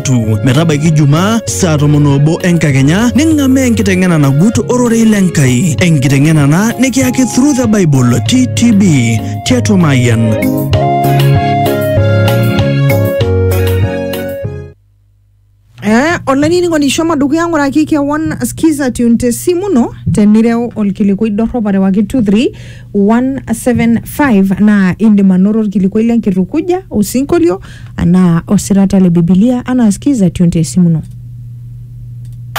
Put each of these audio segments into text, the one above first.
Jumatatu metabaiki Jumaa saa tomon obo enkakenya ning'amaa enkiteng'ena nagut ororei le Nkai. Enkiteng'ena ena nikiyaki Through the Bible TTB tiatua Mayian. Eh, olainining'oni shomo dukuya ng'uraki kewon skiza tune te simu ino tenireu olkilikuai dorrop arewaki 23175 naa indim anoto olkilikuai lenkitukuja osinkolio anaa osirata le Bibilia anaa skiza tionti esimuno.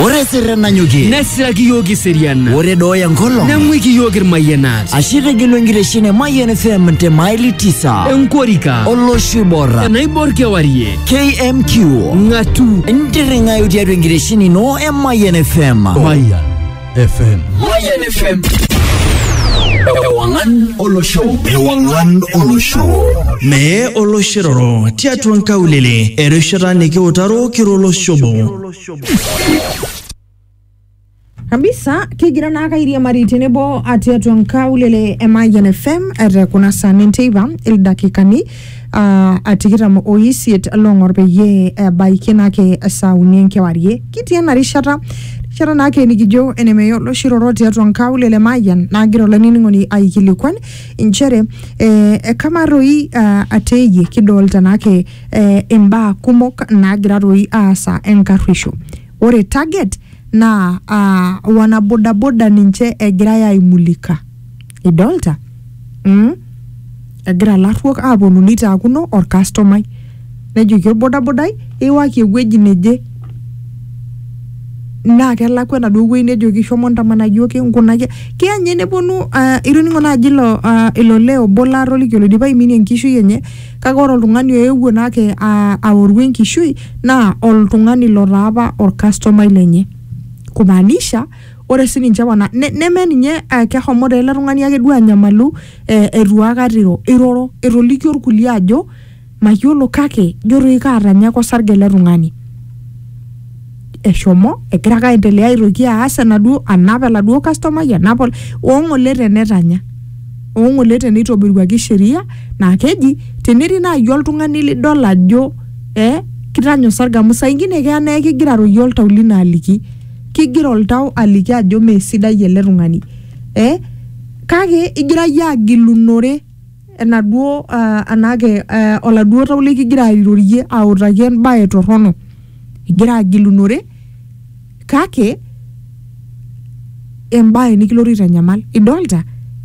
Ore sirren nanyokie. Nesiraki iyiook iserian. Ore dooyo enkolong. Neng'uiki iyiook irmayianat. Ashe itegelu enkitesheni e Mayian FM te maili tisa. Enkorika. Olosho oiborra. Enaibor kewarie. KMQ. Ng'atu. Intirring'ayu tiatua enkitesheni ino e Mayian FM. Mayian. FM. Mayan FM. Ewangan Olosho. Ewangan Olosho. Mee oloshiroro tiatua nkaulele erishata nikiutaro kiroloshobo. kabisa kigira naa kairiamari tenebo atiatua nkaulele e Mayian FM te kuna saa nenteipa ildakikani aa a tikitam o isiet loong'or peyie ebaiki naake esaa uni enkewarie kitii ena rishata rishata naake nikijo enemeya oloshi roro tiatua nkaulele mayian naagira olainining'oni aikilikuan inchere eh, eh, kamaa toi ah, ateeyie kidolta naake eh, imbaa kumok naagira toi aasa enkarruisho ore target naa ah, wanabodaboda ninche egirae aimulika idolta mm? egira ilarruok aaponu neitaakuno orkastomai nejoki orbodabodai iwaki ewueji neje naa kelakwa enaduo wueji nejoki shomo ntamana iyioki nkunaki keya ninye neponu uh, itoning'o naaji ilo uh, ilo lee obo laatoliki oloidipa aiminie enkishui enye kake ore oltung'ani oewuo naake uh, aoru enkishui naa oltung'ani lotaa apa orkastomai lenye kumaanisha ore sininche wana ne, neme ninye uh, kehomo taa ele tung'ani ake duo anyamalu eh, eitu aikata iro iroro etolikio irkulie ajo mayiolo kake jo toi kaatanyaka osarge ele tung'ani eshomo egira ake aendelea aitoki aas enaduo anap eladuo kastomai anap ol- oong'ole tenetanya oong'ole teneitobiruaki sheria naa keji tenetii naaji oltung'ani lidol ajo eh, kitanya osarge amu saa ingine keya naa ekigira aroyie oltau lino aliki kigira oltau aliki ajo mee sidai ele tung'ani eh? kake igira yie agilunore enaduo uh, anake uh, oladuo tau likigira airorie autaki embaye torrono igira agilunore kake embaye nikilotu aitanyamal idolta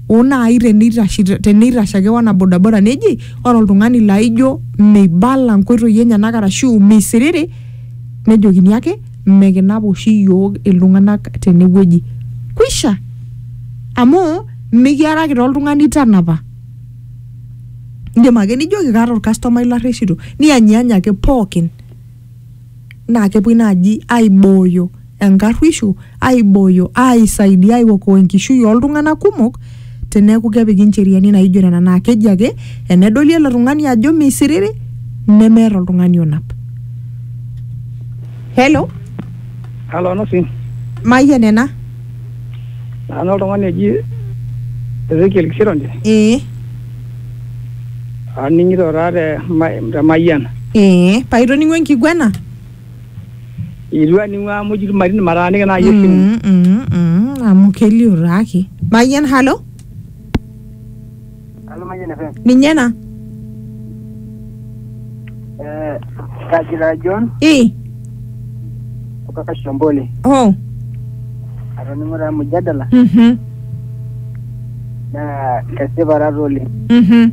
oo naai teneitashe teneitashe ake wana bodaboda neji ore oltung'ani laijo meibala nkoitoi enyenak arashu meisiriri nejokini ake mekinap oshi iyiook iltung'anak tenewueji kwisha amu mikiaraki taa oltung'ani tanapa indim ake nijoki kaata orkastomai larreshito niyanyiyany ake pookin naa kepuoi naaji aibooyo enkarruisho aibooyo aisaidia aiokoa enkishui oltung'anak kumok teneeku kepiki ncheriani naijo nena naa keji ake enedoli ele tung'ani ajo meisiriri nemeeta oltung'ani onap hello Halo Anasi, mayian ena nanu oltung'ani oji Ezekiel Kisironje, ee aning'ito taa te, ma- te Mayian. ee paitoning'o enkiguana Eitu aning'u amu eji ilmarin mataaniki naaji esimu. Mm, mm, mm, amu kelio taake mayian halo Halo Mayian FM. ninye ena Eh, Kajira John i kutoka Shambole. oh Atoning'o taa mjadala mhm naa kesipa taata oleng. mhm